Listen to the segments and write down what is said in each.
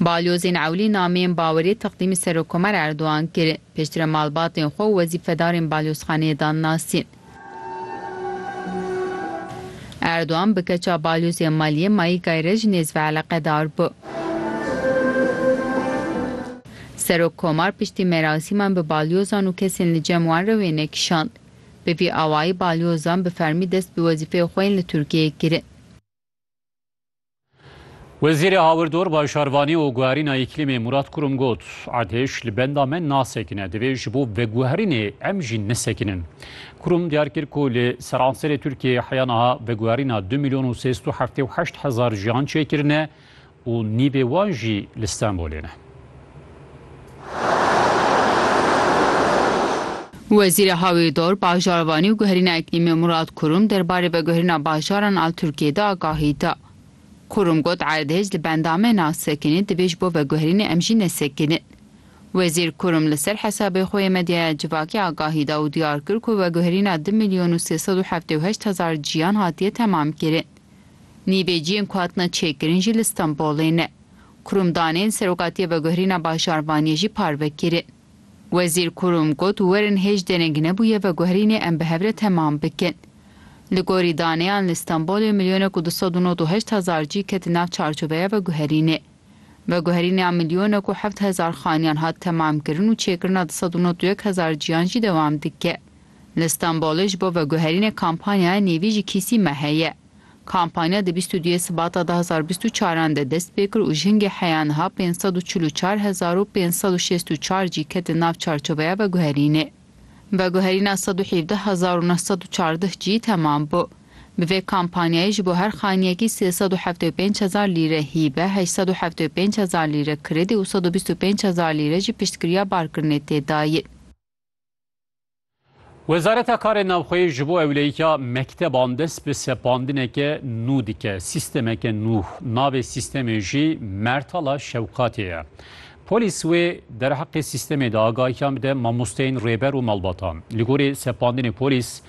Balyozên ewlî nameyên baweriyê teqdîmî Serokomer Erdogan kir, piştre malbatên xwe û wezîfedarên balyozxaneyê dan nasîn. Erdogan bi keça balyozê Maliyê Maîgay re jî nêz veeleqedar bû. Serokkomar piştî merasîman bi balyozan û kesên li cem wan re wêne kişand. Bi vî awayî balyozan bi fermî dest bi wezîfeya xwe yên li Tirkiyeyê kirin. Wezîrê Hawirdor, Bajarvanî û Guherîna Îklîmê Murat Kurum got, Erdhêj li benda me nasekine, divê ji bo veguherînê em jî nesekinin. Kurum diyar kir ku li seranserê Tirkiyeyê heya niha veguherîna du mîlyon û sê sed û heftê û heşt hezar jiyan çêkirine Û nîvê wan jî li Stenbolê ne. Wezîrê Hawîrdor, Bajarvanî û Guherîna Îklîmê Murad Kurum derbarê veguherîna bajaran a Tirkiyeyê de agahî da. Kurum got erdhej li bendame na sekinî divê ji bo veguherînê em jî nesekinin. Wezîr Kurum li ser hesabê xwe yê medyaya civakî agahî da û diyar kir ku veguherîna du milyon û sê sed û heftê û heşt hezar ciyan hatiye temamkirin. Nîveciyên ku hatine çêkirin jî li Stenbolê ne. Kurumdanên Serokatiya Veguherîna Bajarvaniyê jî parve kirin. Wezîr Kurum got werin hêj dereng nebûye veguherînê em bi hev re temam bikin. Li gorî daneyan li Stenbolê milyonek û du sed û nod û heşt hezar cî ketin nav çarçoveya veguherînê. Veguherîna milyonek û heft hezar xaniyan hat temamkirin û çêkirina du sed û nod û yek hezar cîyan jî dewam dike. Li Stenbolê ji bo veguherînê kampanyaya Nêvî ji kîsî me heye. Kampanya di bîst û duyê Sibata du hezar û bîst û çar an de dest pê kir û jingê heya niha pênc sed û çil û çar hezar û pênc sed û şêst û çar jî ketin nav çarçoveya veguherînê. Veguherîna sed û hevdeh hezar û neh sed û çardeh jî temam bû. Bi vê kampanyayê ji bo her xaniyekî sê sed û heftê û pênc hezar lîre hîbe, heşt sed û heftê û pênc hezar lîre kredi û sed û bîst û pênc hezar lîre jî piştgiriya barkirinê tê dayîn. Wezareta Karê Navxweyî ji bo ewleyîka mekteban dest bi sepandineke nû dike. Sîstemeke nû. Navê sîstemê jî Mertala Şewkatê ye. Polîs wê derheqê sîstemê de agahiyan bide mamosteyên rêber û malbatan. Li gorî sepandinê polîs,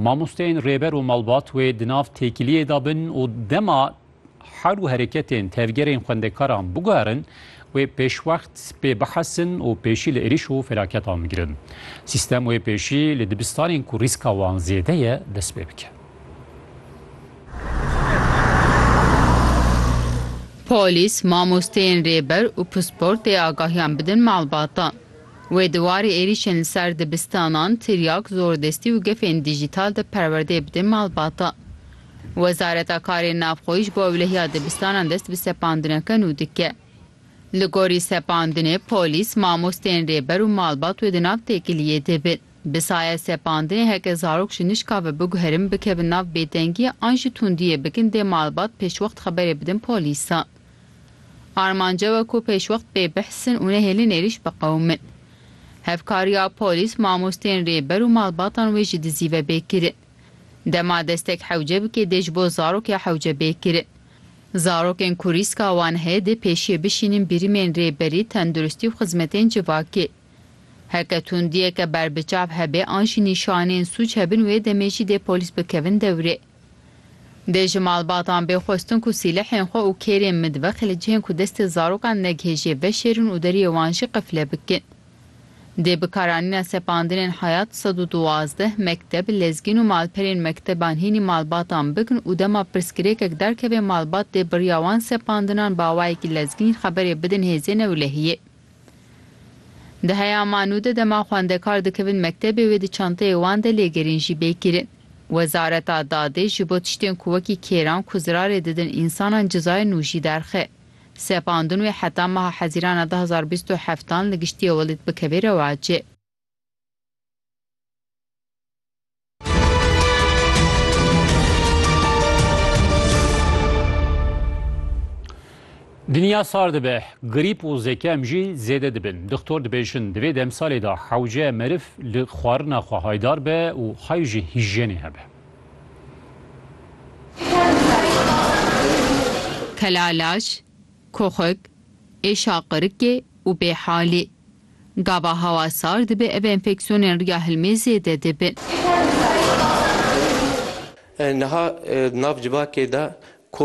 mamosteyên rêber û malbat wê di nav têkiliyê de bin û dema hal û hereketên tevgerên xwendekaran biguherin, wê pêşwext pê bihesin û pêşî li êrîş û felaketan bigirin. Sîstem wê pêşî li dibistanên ku rîska wan zêde ye dest pê bike. Polîs, mamosteyên rêber û pispor tê agahiyan bidin malbata. Wê di warê êrîşên li ser dibistanan, tiryak, zordestî û gefên dîjîtal de perwerdeyê bidê malbata. Wezareta Karên Navxweyî ji bo ewlehiya dibistanan dest bi sepandineke nû dike. Li gorî sepandinê, polîs, mamosteyên rêber û malbat wê di nav têkiliyê de bin. Bi saye sepandinê heke zarok ji nişka ve biguherin bikevin nav bêdengiyê an jî tundiyê bikin dê malbat pêşwext xeberê bidin polîsan. Armanc ew e ku pêşwext bêbihsin û nehêlin êrîş biqewimin. Hevkariya polîs, mamosteyên rêber û malbatan wê ji dizî ve bê kirin. Dema destek hewce bike dê ji bo zarokê hewce bê kirin. Zarokên ku rîska wan heye dê pêşiyê bişînin birîmên rêberî, tenduristî û xizmetên civakê. Heke tundiyeke berbiçav hebe an jî nîşaneyên sûc hebin wê demê jî dê polîs bikevin dewrê. Dê ji malbatan bê xwestin ku sîlehên xwe û kêrên midve, qilic hên ku destê zarokan negihêjê, veşêrin û deriyê wan jî qifle bikin. Dê bikaranîna sepandinên hayat sed û duwazdeh mekteb, lezgîn û malperên mekteban hînî malbatan bikin û dema pirsgirêkek derkeve malbat dê biriya wan sepandinan bi awayekî lezgîn xeberê bidin hêzên ewlehiyê. Di heya Manu de dema xwendekar dikevin mektebê wê di çanteyê wan de lêgerîn jî bê kirin. Wezareta Dadê ji bo tiştên ku wekî kêran ku zirarê didin însanan cezayê nû jî derxe. Sepandin wê heta meha Hezîrana du hezar û bîst û heft dan li giştî Welîd Bikevê rewacê. Dinya sar dibe, grîp û zekem jî zêde dibin. Dixtor dibêjin, di vê demsalê de hewce meriv li xwarina xwe haydar be û hay ji hîjyenê hebe. Kelalaş, koxik, êşa qirikê û bêhalî. Gava hawa sar dibe ev enfeksiyonên riya hilmê zêde dibin. Niha di nav civakê de.